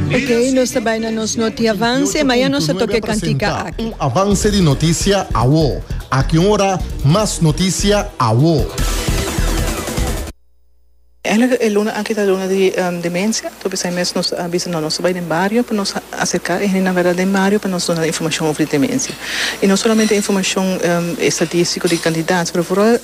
Ok, nos ta bai na nos noti avanse, ma ya nos a toca e cantica aki. Un avance di noticia awo. Aki un ora mas noticia awo. Eigenlijk e luna aki ta luna di demencia, tur bisai mes nos a bisa no, nos ta bai den bario pa nos acerca e hendenan verda den bario pa nos duna nan informacion over di demencia. Y no solamente informacion estatistico di cantidad, pero vooral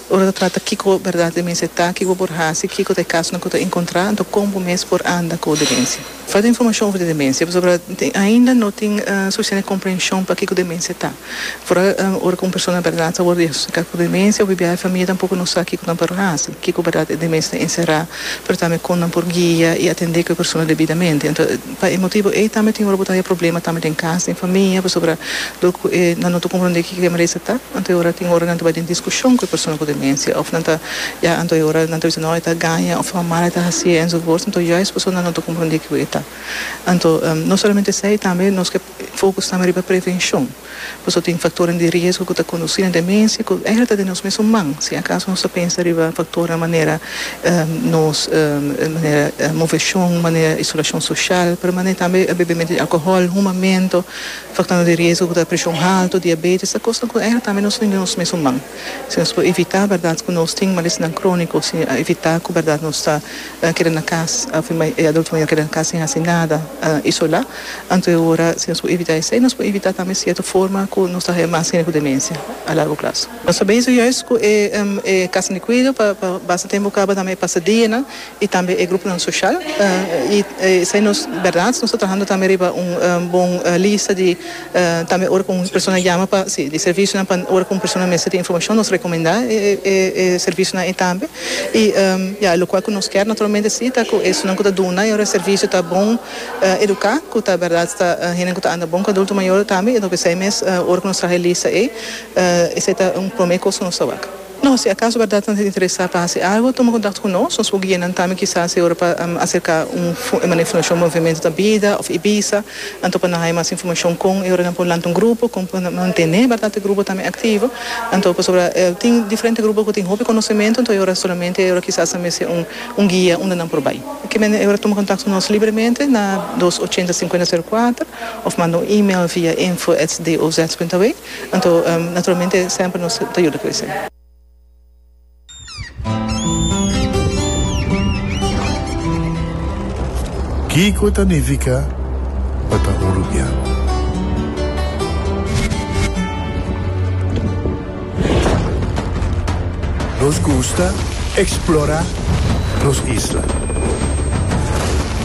Ora ta trata kiko bèrdat di mester ta, kiko por hasi, kiko ta e kasonan ku ta enkontrá, anto kon bo mes por anda ku demensia. Falta informashon over di demensia pasobra ainda no tin sufisiente komprenshon pa kiko demensia ta. Afora ora ku un persona bèrdat ta wòrdu diagnostika ku demensia, biaha e famia tampoko no sa kiko nan por hasi, kiko bèrdat e demensia ta enserá, pero tambe kon nan por guia i atendé ku e persona debidamente. Pa e motibu ei tambe tin ora bo ta haya problema tambe den kas, den famia, pasobra dor ku e nan no ta komprondé kiko e merese ta, anto e ora tin ora nan ta bai den diskushon ku e persona ku demensia òf nan ta ya anto e ora nan ta bisa no e ta gaña òf tabata mal e ta hasié enzovoorts anto juist pasobra nan no ta komprondé kiko e ta. Anto no solamente esei tambe nos ke fokus tambe riba prevenshon. Pasobra tin faktornan di riesgo ku ta kondusí na demensia ku ègera ta den nos mesun man si akaso nos ta pensa riba faktornan manera nos manera moveshon, manera isolashon soshal, pero manera tambe bebementu di alkohòl, humamentu, faktornan di riesgo ku ta preshon haltu, diabetes, ta kosnan ku ègera tambe nos tin den nos mesun man. Si nos por evitá bèrdat ku nos tin malesnan króniko, si evitá ku bèrdat nos ta. a keda na cas, afe mai e adulto maya keda na cas sin haci nada, a isola, anto e ora si nos por evita esey, nos por evita tambe cierto forma cu nos ta haya mas hende cu demencia a largo plazo. Nos ta bezig juist cu e e casanan di cuido pa pa basta tempo caba tambe e pasadianan y tambe e gruponan social y esey nos berdad nos ta trahando tambe riba un bon lista di. Tambe ora ku un persona yama pa si di servisionan pa ora ku un persona mester di informashon nos rekomendá e servisionan ei tambe. I ya lokual ku nos kèr naturalmente si ta ku esunnan ku ta duna yora servisio ta bon eduká ku ta bèrdat ta hende ku ta anda bon ku adulto mayor tambe enton p'esei mes ora ku nos traha e lista ei esei ta un promé kos ku nos ta wak. No, si acaso berdad nan ta interesa pa haci algo, tuma contact cu nos. Nos por guia nan tambe kisas e ora pa acerca un manera informacion Movimiento ta bida of Ibiza. Anto pa nan haya mas informacion con e ora nan por lanta un grupo, con pa nan mantene berdad e grupo tambe activo. Anto pasobra tin diferente grupo cu tin hopi conocemento, anto e ora solamente e ora kisas nan mester un guia unda nan por bay. Por kimen e ora tuma contact cu nos libremente na dos ochenta cincuenta zero cuater of manda un email via info@doz.aw. Anto, naturalmente semper nos ta yuda cu esey. Kico ta nifica pa ta un rubian? Nos gusta explora nos isla.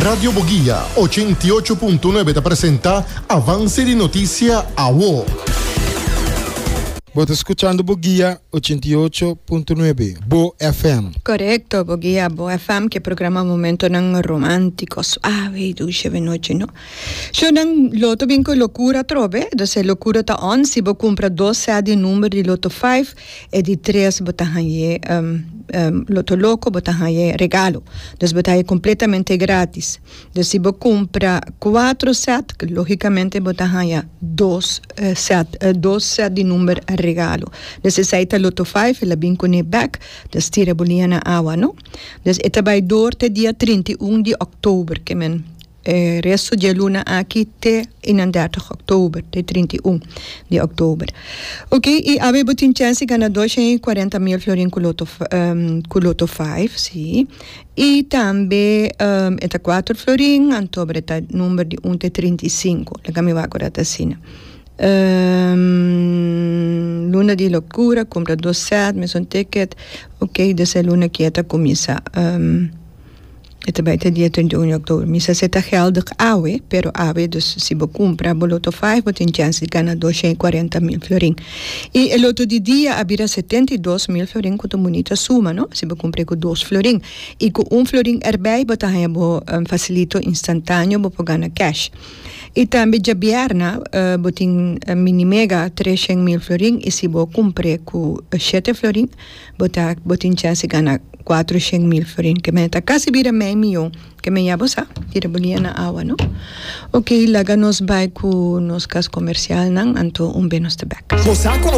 Radio Boguia, ochenta i ocho punto nuebe ta presenta Avance di Noticia Awo. Bo ta scuchando Boguia, ochenta i ocho punto nuebe, Bo FM. Correcto, Boguia, Bo FM, ke programa momentonan romantico, suave y dulce be nochi, no? Shownan loto bin cu locura atrobe, do se locura ta on si bo cumpra dos set di number di loto five, E di tres bo ta hañ'é loto loko bo ta hañ'é regalo dus bo ta hañ'é kompletamente grátis dus si bo kumpra kuatro sèt lógikamente bo ta haña dos sèt dos sèt di number regalo dus esei ta loto five el a bin kuné bèk dus tira bo liña na awa no dus e ta bai dor te dia trinta i un di òktober ke men. E resto di e luna aki te i nan dèrtig òktober, te trinta i un di òktober. Ok, i awe bo tin chèns di gana dos shen i kuarenta mil florin ku loto ku loto faiv, sí. I tambe e ta kuater florin, anto bre ta number di un te trinta i sinku, laga mi wak ora ta asina. Luna di lokura, kumpra dos sèt, mesun tikèt, ok, desha e luna kia ta kuminsá. E ta bai te dia trenta i un di october. Mi sa se ta geldig awe, pero awe dus si bo cumpra bo loto five bo tin chance di gana dosha i cuarenta mil florin. I e loto di dia a bira setenta i dos mil florin cu ta un bunita suma, no? Si bo cumpr'e cu dos florin. I cu un florin erbij bo ta haña bo facilito instantaneo bo por gana cash. I tambe djabièrna bo tin mini mega treshen mil florin i si bo cumpr'e cu shete florin, Bo ta aki, bo tin chance di gana cuatro shen mil florin, ke mene ta casi bira mei miyon, ke men ya bo sa, tira bo lia na awa no. Ok, laga nos bai cu nos cas comercialnan, anto un be nos ta bek.